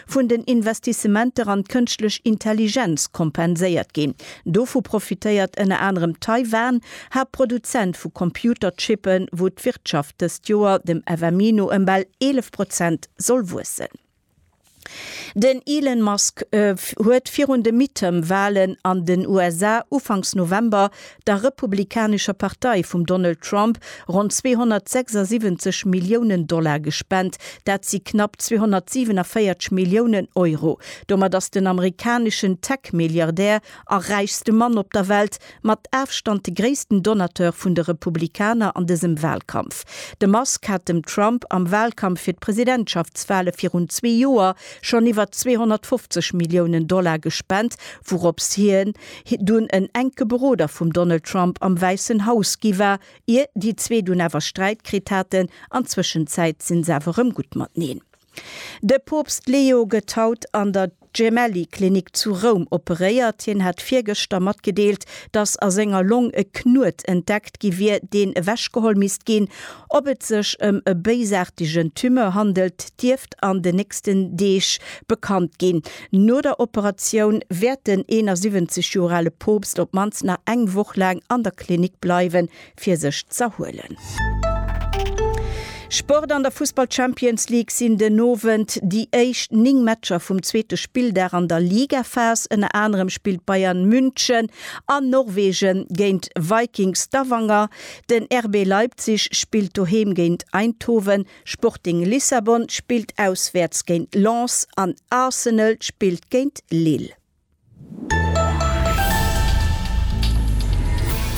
vun den Investissementer an d'kënschtlech Intelligenz kompenséiert ginn. Dovu profitéiert ënner anerem Taiwan, Haaptproduzent vu Computerchippen, wou d'Wirtschaft dëst Joer dem FMI no ëm bal 11 Prozent soll wuessen. Den Elon Musk huet virun de Midterm-Walen an den USA ufanks November der republikanescher Partei vum Donald Trump, ronn 276 Milliounen Dollar gespent, dat si knapp 247 Milliounen Euro. Domat ass den amerikaneschen Tech-Milliardär a räichste Mann op der Welt mat Afstand de gréissten Donateur vun de Republikaner an dësem Walkampf. De Musk hat dem Trump am Walkampf fir d'Presidentschaftswale virun zwee Joer schonn iwwer 250 Milliounen Dollar gespent, wourops hien, hie dunn en enke Beroder vum Donald Trump am Wäissen Haus gi war, ier déi zwee dunn awer Sträit kritt haten. An Zwëschenzäit si se awer rëm gutt mateneen. De Poopst Leo gëtt haut an der Gemelli Klinik zu Roum operéiert. Hien hat virgëschter matgedeelt, datt a senger Long e Knuet entdeckt gi wier, deen ewechgeholl misst ginn. Ob et sech ëm e béisaartegen Tumeur handelt, dierft an de nächsten Deeg bekannt ginn. No der Operatioun wäert den 71 Joer ale Poopst op d'mannst nach eng Woch laang an der Klinik bleiwe fir sech z'erhuelen. Sport An der Fussball Champions League sinn den Owend déi éischt 9 Matcher vum zweete Spilldag an der Ligaphas. Ënner anerem spillt Bayern München an Norwegen géint Viking Stavanger. Den RB Leipzig spillt doheem géint Eindhoven. Sporting Lissabon spillt auswäerts géint Lens an Arsenal spillt géint Lille.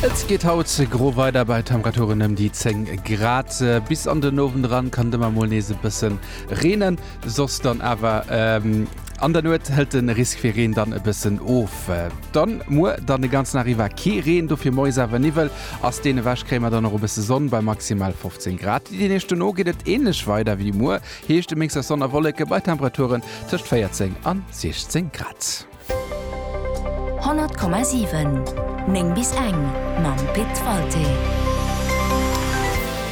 Et geet haut gro weider bei Temperaturen ëm déi 10 Grad. Bis an den Owend eran kann et ëmmer mol nees e bësse reenen, soss dann awer an der Nuet hëlt de Risk fir Reen dann e bëssen of. Dann muer dann de ganzen Dag iwwer kee Reen, dofir moies awer Niwwel. Ass deen ewech, kréie mer dann och e bësse Sonn bei maximal 15 Grad. Déi Deeg dono geet et änlech weider wéi muer, heescht e Mix aus Sonn a Wolleke bei Temperaturen tëscht 14 an 16 Grad. 100,7 9 bis eng mam Pit Walté.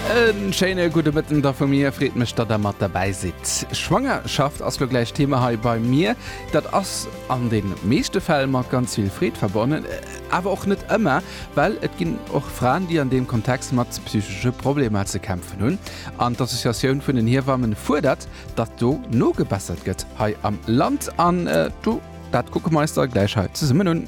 E schéine gudde Mëtten da vu mir. Freet mech, datt der mat derbäi sidd. Schwangerschaft ass lo gläich Thema hei bei mir. Dat ass an de meeschte Fäll mat ganz vill Freed verbonnen, awer och net ëmmer. Well et ginn och Fraen, déi an deem Kontext mat psychesche Problemer ze kämpfen hunn. An d'Associatioun vun den Hiewamme fuerdert, datt do nogebessert gëtt hei am Land. An do, dat kucke mer eis da gläich hei zesummen un.